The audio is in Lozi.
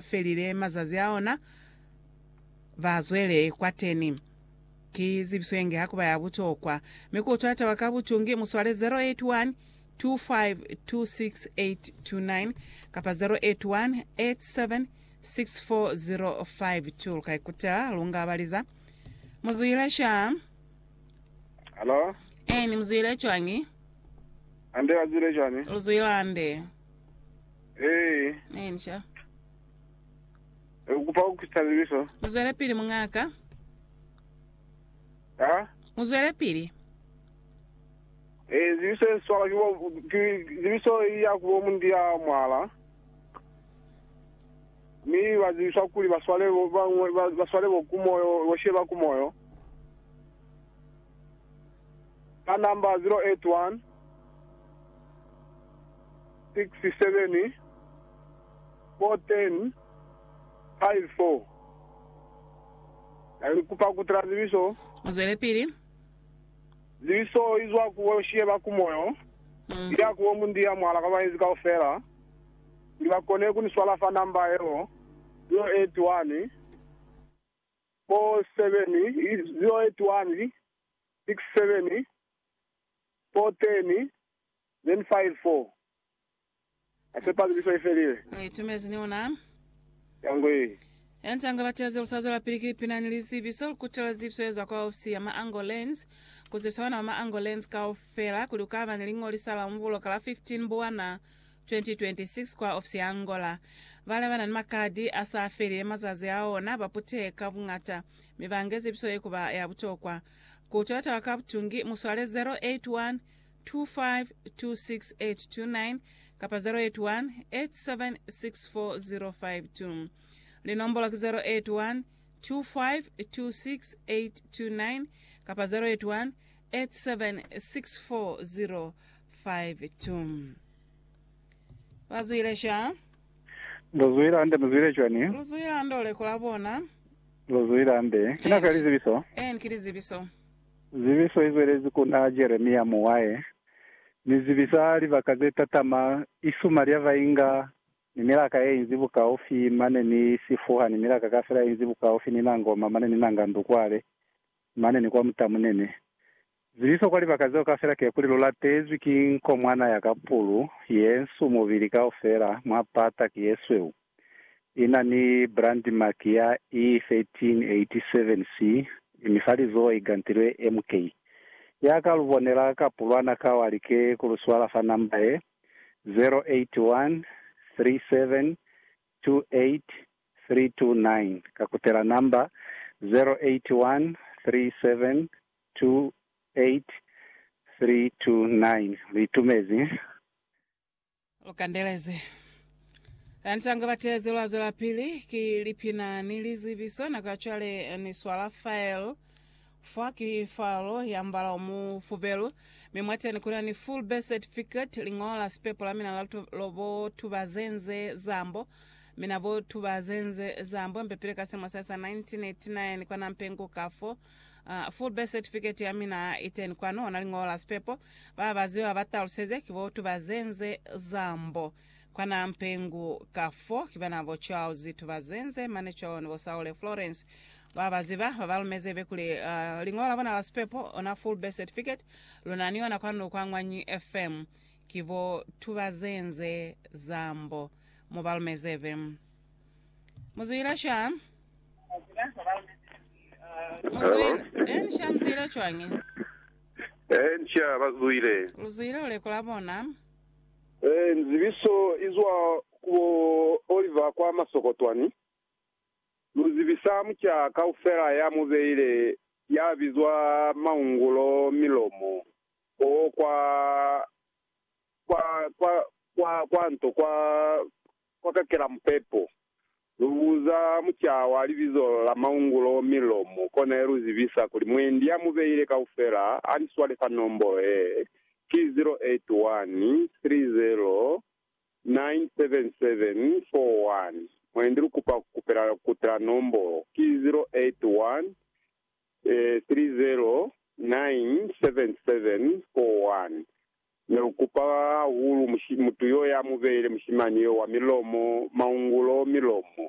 felile mazazi a ona, ba zwele kwateni. Ki zibiso ye nge ha ku ba ya butokwa, mi ku utwa taba ka butungi, mu swale 081 252682 kapa 081 8764052. Lu ka ikutela lu nga baliza. Mu zwile sha. Halo, Eeni, mu zwile cwañi? hande ba zwile cwani? Lu zwile hande. Hei, Inja. ukupa kukusabiliso. Muzwele pili mung'aka. Ha? Muzwele pili. Eh, zibiso eswala kibo ki zibiso ya kubo mundi ya mwala. Mi bazibiswa kuli baswale bo bangwe ba- baswale bo kumoyo, bosheba kumoyo. Ka namba 0816741054 ni kupa kutala zibiso. Muzwelepili. Zibiso izwa ku bo Sheba ku moyo, iya ku bo Mundiya mwahala kwa baezi kaufela, kuli bakone ku ni swala fa namba yeo, 0814701054. six seven four ten then five four Na sepa zuliso i felile. Ni itumezi ni ona. Yangwee. Yanta nga bati aze lusa zwela pili ki pina ni lizibiso, lukutela zibiso ye zwa kwa ofisi ya Maango Lands ku zibisa bana ba Maango Lands kaufela kuli ku kaba ni liñolisa la umbulo ka la 15 Mbuwana 2026 kwa ofisi ya Angola. Bale bana ni makadi a sa felile mazazi a ona ba puteka bungata mi ba nge zibiso ye ku ba ya butokwa. Ku tata ka butungi mu swale 0812526829 kapa 0818764052. Linombola ki 0812526829 kapa 0818764052. Ba zwile sha? Lu zwile hande, mu zwile cwani? Lu zwile hande u lekola bona. Lozwi la Nde. Ki nako ya lizibiso. Een, ki lizibiso. Zibiso i zwelezi ku na Jeremia muwahe, mi zibisa libaka ze tatama, isuma lya ba inga ni milaka ye inzi bukaufi mane ni sifuha ni milaka kafela ye inzi bukaufi ni nangoma mane ni nanga ndu kwale mane ni kwa mutamu nene. Ziliso kwa libaka zeo kaufela kekuli lulatezwi ki nkomwana ya ka pulu, yensu mubili kaufela, mwa pata ki yesweu, ina ni brand mark ya E1387 si, mi fa lizoho igantilwe MK. Ya ka lubonela kapulwana ka wa like kuluswala fa namba ye, 0813728329, kakutela namba, 0813728329. 28329 liitumezi. Lukandelezi. Lantanga batezi lwa zwelapili ki lipina ni lizibiso nako ya cwale ni swala file. Fa ki file ya mbala o mufubelu, mi mwateni kuna ni full birth certificate, lingola la sipepo la mina la bo tubazenze zambo, mina bo tubazenze zambo mpepile ka selimo sa sa 1989 kwa Nampenguka fo. Ah, full birth certificate ya mina i teni kwanu, na liñolo la sipepo. Ba ba ziba ba taluseze ki bo Tubazenze Zambo. Kwa na Mpengu ka fo, ki bana bo Charles Tubazenze, mane cwalo ni bo Saule Florence. Ba ba ziba ba ba lumeze be kuli, ah, liñolo la bona la sipepo, ona full birth certificate, lu na ni yona kwanu kwa Ñwanyi FM. Ki bo Tubazenze Zambo. Mu ba lumeze be. Muzuila sham. Muzuila. En sham zuila chwangi. Eh, ncha bazuile. Luzuila ulekula bona. Eh, nzibiso izwa kubo Oliver kwa Masokotwani. Luzibisa muca kaufela ya mubeile ya bizwa Maungulo Milomo o kwa kwa kwa kwa kwanto kwa Kwa kakela mupepo, lu buza mucaa wa libizo la maungulo mi lomu kona ye lu zibisa kuli mwendi ya mu beile kaufela a ni swale fa nombolo ye, ki 0813097741. Mwendi lu kupa ku kupela kuti la nombolo ki 0813097741. Ne lu kupa hahulu mutu yo ya mu beile mushimani yo wa milomo maungulo milomo.